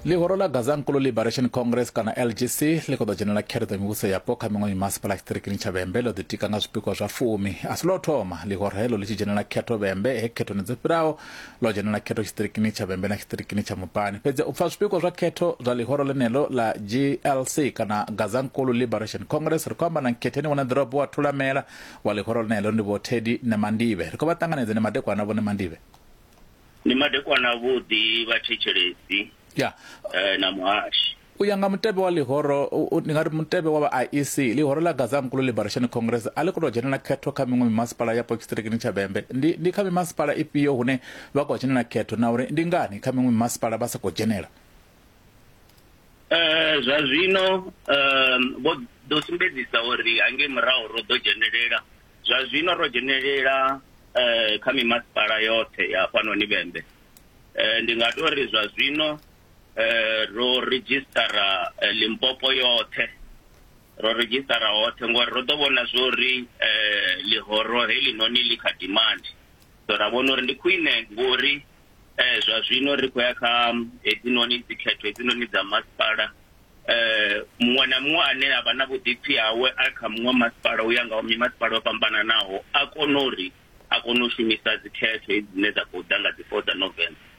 ḽihoro ḽa gaza nkulu liberation congress kana lgc ḽi khou ḓo dzhenela khereḓo mivhuso yapo kha miṅwe mimasipala tshiṱirikini tsha vhembe ḽo ḓitika nga zwipikwa zwa fumi a si lwa thoma ḽihoro heḽo ḽi tshi dzhenela khetho vhembe he khethoni dzo fhiraho ḽo dzhenela khetho tshiṱirikini tsha vhembe na tshiṱirikini tsha mupani fhedzi u pfa zwipikwa zwa khetho zwa ḽihoro ḽeneḽo ḽa glc kana gaza nkulu liberation congress ri khou amba na nkhetheni wana ḓorobo wa thulamela wa ḽihoro ḽeneḽo ndi vho tedi nemandive ri khou vha ṱanganedza ne madekwana vho nemandive Ndi madekwana avhuḓi vhathetshelesi ya eh, na muhashi. u ya nga mutevhe wa ḽihoro u- u- ndi nga ri mutevhe wa vha iec ḽihoro ḽa gazankulu liberation congress a ḽi khou tou dzhenela khetho kha miṅwe mimasipala yapo tshiṱirikini tsha vhembe ndi, ndi kha mimasipala ifhio hune vha khou dzhenela khetho na uri ndi ngani kha miṅwe mimasipala vha sa khou dzhenela Eh, zwa zwino eh, vho ḓo sumbedzisa uri hangei murahu ro ḓo dzhenelela zwa zwino ro dzhenelela eh, kha mimasipala yoṱhe ya fhanoni vhembe eh, ndi nga tou ri zwa zwino eh, ro redzhisitara eh, limpopo yoṱhe ro redzhisitara hoṱhe ngori ro ḓo vhona zwo ri eh, ḽihoro helinoni ḽi kha demand so ra vhona uri ndi khwine ngori eh zwa zwino ri khou ya kha hedzinoni dzikhetho hedzinoni dza masipala eh muṅwe na muṅwe ane a vha na vhuḓipfi hawe a kha muṅwe masipala u ya nga mimasipala yo fhambananaho a kona uri a kone u shumisa dzikhetho hedzi dzine dza khou ḓa nga dzi four dza november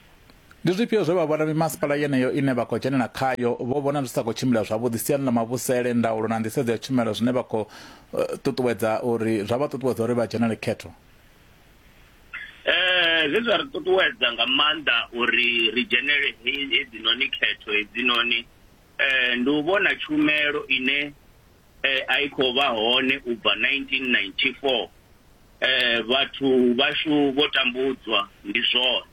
ndi zwifhio zwe vha vhona mimasipala yeneyo ine vha khou dzhenela khayo vho vhona zwi sa khou tshimbila zwavhuḓi siani ḽa mavhusele ndaulo na nḓisedzo ya tshumelo zwine vha khou eh, ṱuṱuwedza uri zwa vha ṱuṱuwedza uri vha dzhenele khetho Eh zwe zwa ri ṱuṱuwedza nga maanḓa uri ri dzhenele hedzinoni khetho hedzinoni eh ndi u vhona tshumelo ine eh, a i khou vha hone u bva 1994 eh vhathu vhashu vho tambudzwa ndi zwone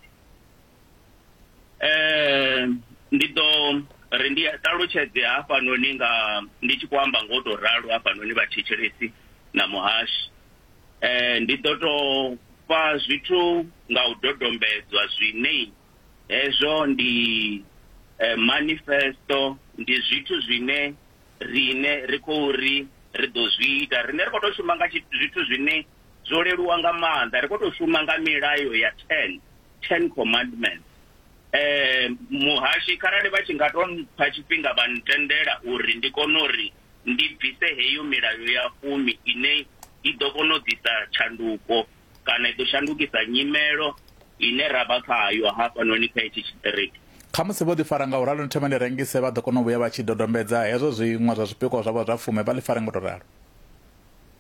eh ndi ḓo ri ndi ṱalutshedze hafhanoni nga ndi tshi khou amba ngo tou ralo hafhanoni vhathetshelesi na muhashi eh ndi ḓo tou fha zwithu nga u dodombedzwa zwine hezwo ndi eh, manifesto ndi zwithu zwine rine ri khou ri ri ḓo zwi ita rine ri khou tou shuma nga tshi- zwithu zwine zwo leluwa nga maanḓa ri khou tou shuma nga milayo ya ten ten commandments eh muhashi kharali vha tshi nga to mpha tshifhinga vha ntendela uri ndi kone uri ndi bvise heyo milayo ya fumi ine i ḓo kona u ḓisa tshanduko kana i ḓo shandukisa nyimelo ine ra vha khayo hafhanoni kha hetshi tshiṱiriki kha musi vho ḓifara nga u ralo ni thoma ni rengise vha ḓo kona u vhuya vha tshi dodombedza hezwo zwiṅwe zwa zwipikwa zwavho zwa fume vha ḽi fare ngo to ralo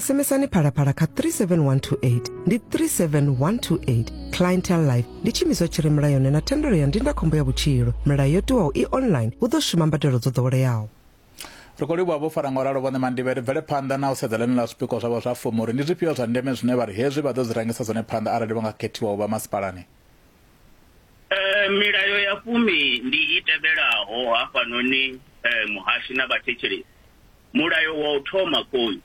SMSani phalaphala kha 37128 ndi 37128 clientele life ndi tshiimiswa tshi re mulayoni na thendelo ya ndindakhombo ya vhutshilo milayo yo tiwaho i online hu ḓo shuma mbadelo dzo ḓoweleaho ri khou livhuwa vho fara nga u ralo vhoṋe mandibe ri bvele phanḓa na u sedza ḽeneḽa zwipikwa zwavho zwa fumi uri ndi zwifhio zwa ndeme zwine vha ri hezwi vha ḓo zwi rangisa zwone phanḓa arali vha nga khethiwa u vha masipalani Eh, milayo ya fumi ndi i tevhelaho hafhanoni eh, muhashi na vhathetshelesi mulayo wa u thoma khoyu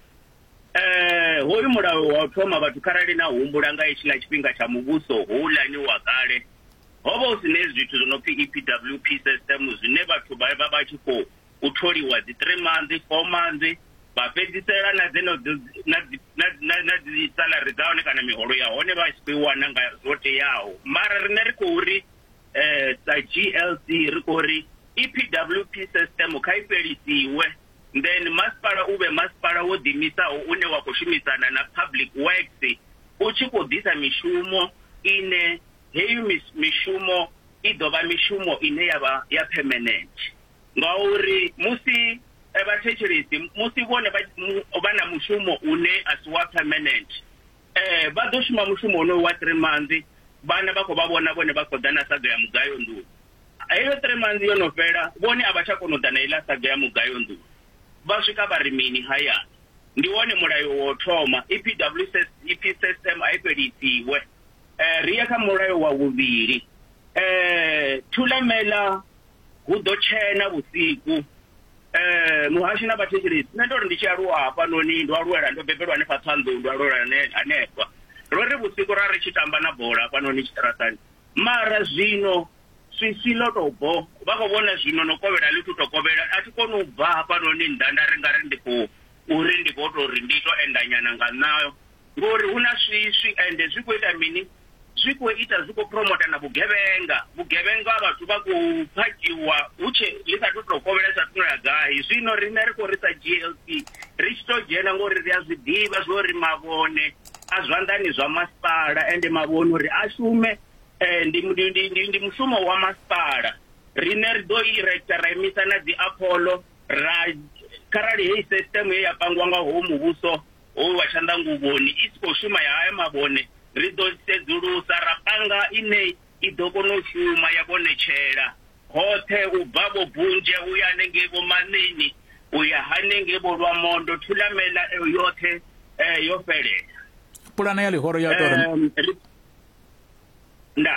eh, hoyu mulayo wa u thoma vhathu kharali na humbula nga hetshiḽa tshifhinga tsha muvhuso houḽani wa kale ho vha hu si ne zwithu zwo no pfi epwp system zwine vhathu vha vha vha tshi khou u tholiwa dzi three months four months vha fhedzisela na dzeno na dzi salary dza hone kana miholo ya hone vha tshi khou i wana nga zwo teaho mara rine ri khou ri um sa g l c ri khou ri e p w p system kha i fhelisiwe then masipala u vhe masipala wo ḓimisaho une wa khou shumisana na public works u tshi khou ḓisa mishumo ine heyi mishumo i ḓo vha mishumo ine ya vha ya permanent ngauri musi eh, vhathetshelesi musi vhone vha mu- vha na mushumo une a si wa permanent eh vha ḓo shuma mushumo wonoyo wa three months vhana vha khou vha vhona vhone vha khou ḓa na saga ya mugayo nḓuni heyo three months yo no fhela vhone a vha tsha kona u ḓa na iḽa saga ya mugayo nḓuni vha swika vha ri mini hayani ndi wone mulayo wo thoma E epws epsm a i fhelisiwe eh ri ya kha mulayo wa vhuvhili eh thulamela hu ḓo tshena vhusiku eh muhashi na vhathetshelesi nṋe ndo ri ndi tshi aluwa hafhanoni ndo aluwela ndo bebelwa hanefha ṱhanḓou ndo aluwela hane- hanefha ro ri vhusiku ra ri tshi tamba na bola hafhanoni tshiṱaratani mara zwino swiswi ḽo tou bho vha khou vhona zwino no kovhela ḽi thu to kovhela a thi koni u bva hafhanoni nnḓa nda ri nga ri ndi khou uri ndi khou tou ri ndi to endanyana nga nṋa Ngori hu na swiswi ende zwi khou ita mini? Zwi khou ita zwi khou promoter na vhugevhenga. Vhugevhenga vhathu vha khou phakiwa hu tshe ḽi sa thu to kovhela sa thuno ya gai. Zwino riṋe ri khou ri sa GLC ri tshi to dzhena ngori ri a zwi ḓivha zwori mavhone a zwanḓani zwa masipala ende mavhone uri a shume ndi ndi ndi ndi ndi mushumo wa masipala. Riṋe ri ḓo i rector ra imisa na dzi Apollo ra kharali heyi system ye ya pangiwa nga hoyu muvhuso hou wa tshanḓanguvhoni i si khou shuma ya haya mavhone ri ḓo sedzulusa ra panga ine i ḓo kona u shuma ya vhonetshela hoṱhe u bva vho bunzhe u ya hanengei vho manini u ya hanengei vho lwamondo thulamela eyo yoṱhe um yo fhelela pulane ya ḽihoro ya ita uri nda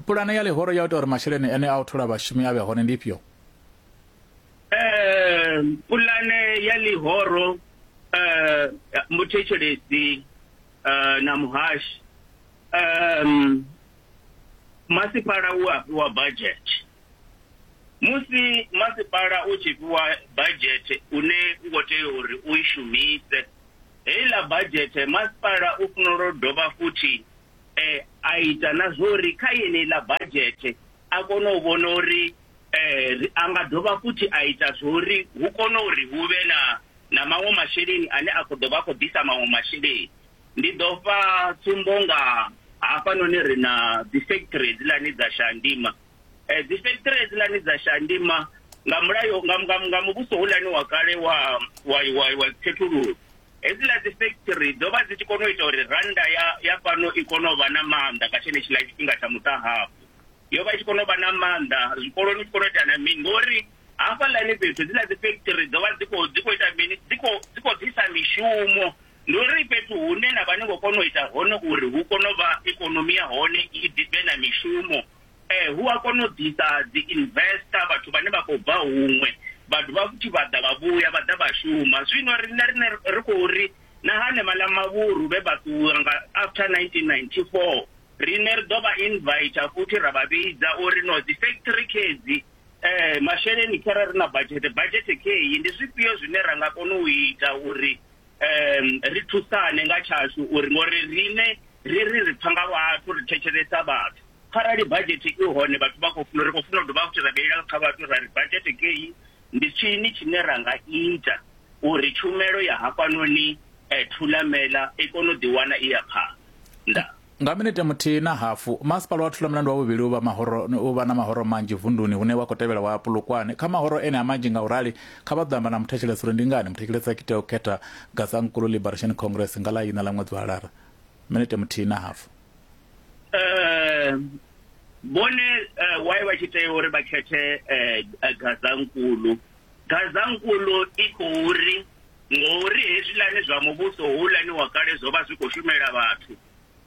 pulane ya ḽihoro ya ita uri masheleni ene a u thola vhashumi a vhe hone ndi ifhio eh pulane ya ḽihoro eh muthetshelesi eh na muhashi eh masipala u a fhiwa budget musi masipala u tshi fhiwa budget une u khou tea uri u i shumise heiḽa budget masipala u fanela u dovha futhi eh a ita na zwori kha yeneiḽa budget a kone u vhona uri eh a nga dovha futhi a ita zwori hu kone uri hu vhe na na maṅwe masheleni ane a khou dovha a khou ḓisa maṅwe masheleni ndi ḓo fha tsumbo nga hafhanoni ri na dzi factory hedziḽani dza shandima eh dzi factory hedziḽani dza shandima nga mulayo nga nga nga muvhuso hulani wa kale wa wa wa wa khethululo hedziḽa dzi factory dzo vha dzi tshi kona u ita uri randa ya ya fhano i kone u vha na maanḓa nga tshenetshiḽa tshifhinga tsha muṱahafu yo vha i tshi kona u vha na maanḓa zwikoloni tshi kona u ita na mini ngori hafhaḽani fhethu dzi na dzi factory dzo vha dzi khou dzi khou ita mini dzi khou dzi khou ḓisa mishumo ndi uri fhethu hune na vha ni khou kona u ita hone uri hu kone u vha ikonomi ya hone i ḓivhe na mishumo eh hu a kona u ḓisa dzi investor vhathu vhane vha khou bva huṅwe vhathu vha futhi vha ḓa vha vhuya vha ḓa vha shuma zwino riṋe rine ri khou ri na hanevhaḽa mavhuru vhe vha ṱuwa nga after 1994 rine ri ḓo vha invita futhi ra vha vhidza uri no dzi factory khedzi um masheleni khare ri na budget budget kheyi ndi zwifhio zwine ra nga kona u ita uri um ri thusane nga tshashu uri ngori rine ri ri ri pfa nga vhathu ri thetshelesa vhathu kharali budget i hone vhathu vha khou funa ri khou funa u dovha futhi ra vheilela kha vhathu ra ri budget kheyi ndi tshini tshine ra nga ita uri tshumelo ya hafhanoni eh, Thulamela i kone u ḓiwana i ya phanḓa? Nga minete muthihi na hafu, masipala wa Thulamela ndi wavhuvhili u vha mahoro u vha na mahoro manzhi vunduni hune wa khou tevhela wa Polokwane. Kha mahoro ene a manzhi nga u rali, kha vha ḓo amba na muthetshelesi uri ndi ngani muthetshelesi a tshi tea u khetha Gazankulu Liberation Congress nga ḽa ina ḽa ṅwedzi wa Lara. Minete muthihi na hafu. eh, vhone eh, why vha tshi tea uri vha khethe eh, eh, gazankulu gazankulu i khou ri ngori hezwilani zwa muvhuso houḽani wa kale zwo vha zwi khou shumela vhathu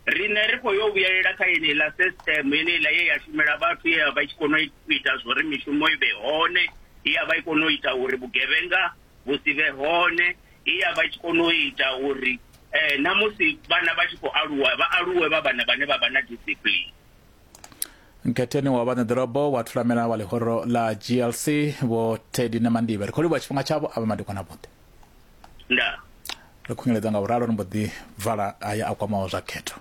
riṋe ri khou yo vhuyelela kha yeneiḽa system yeneiḽa ye ya shumela vhathu ye ya vha i tshi kona u ita zwo ri mishumo i vhe hone ye ya vha i kona u ita uri vhugevhenga vhu si vhe hone He ya vha i tshi kona u ita uri eh, na musi vhana vha tshi khou aluwa vha aluwe vha vhana vhane vha vha na discipline nkhetheni wa vhaṋeḓorobo wa thulamela wa ḽihoro ḽa glc vho tedi na mandibe ri khou livhuwa tshifhinga tshavho a vha madekwana vhoṱhe ndaa ri khunyeledza nga vhuralo ri mbo ḓi vala aya a kwamaho zwa khetho